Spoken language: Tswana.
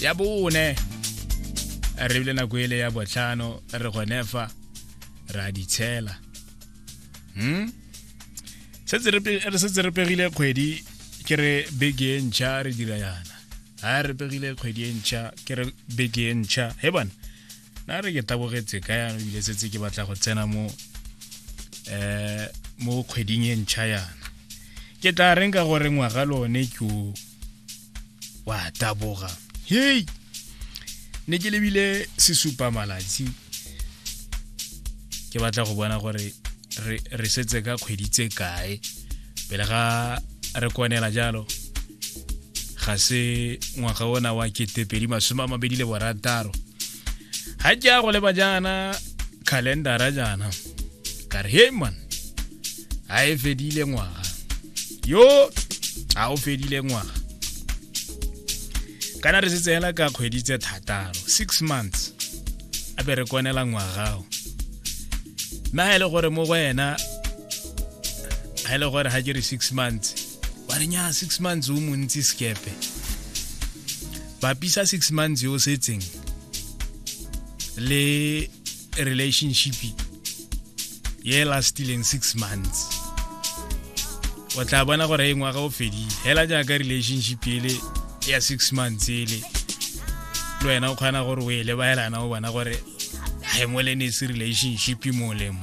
ya bone re bile nako ele ya botlhano re gone fa ra di tshela hmm? re setse re pegile kgwedi ke re beke e ntšha re dira yana ga re pegile kgwedi e ntšha ke re beke e ntšha he bana na re ke tabogetse ka yana ebile setse ke batla go tsena mo um mo kgweding e ntšha yana ke tla reng ka gore ngwaga lone ke o wa taboga hei ne ke lebile sesupa malatsi ke batla go bona gore re setse ka kgwedi tse kae pele ga re kwanela jalo ga se ngwaga ona wa ketepedi masome a mabedi le borataro ga ke ya go leba jaana calendara jaana ka re hey man a e fedile ngwaga yo a o fedile ngwaga kana re setse hela ka kgwedi tse thataro six months a be re konela ngwagao mme ga e le gore mo go ena ga e le gore ga ke re six months wa re nyaa six months o montsi sekepe bapisa six months yo setseng le relationship ye e lastileng six months o tla bona gore e ngwaga o fedile hela jaaka relationship ele ya six months ele le wena o kgona gore o e lebaelana o bona gore ga e molenese relationship molemo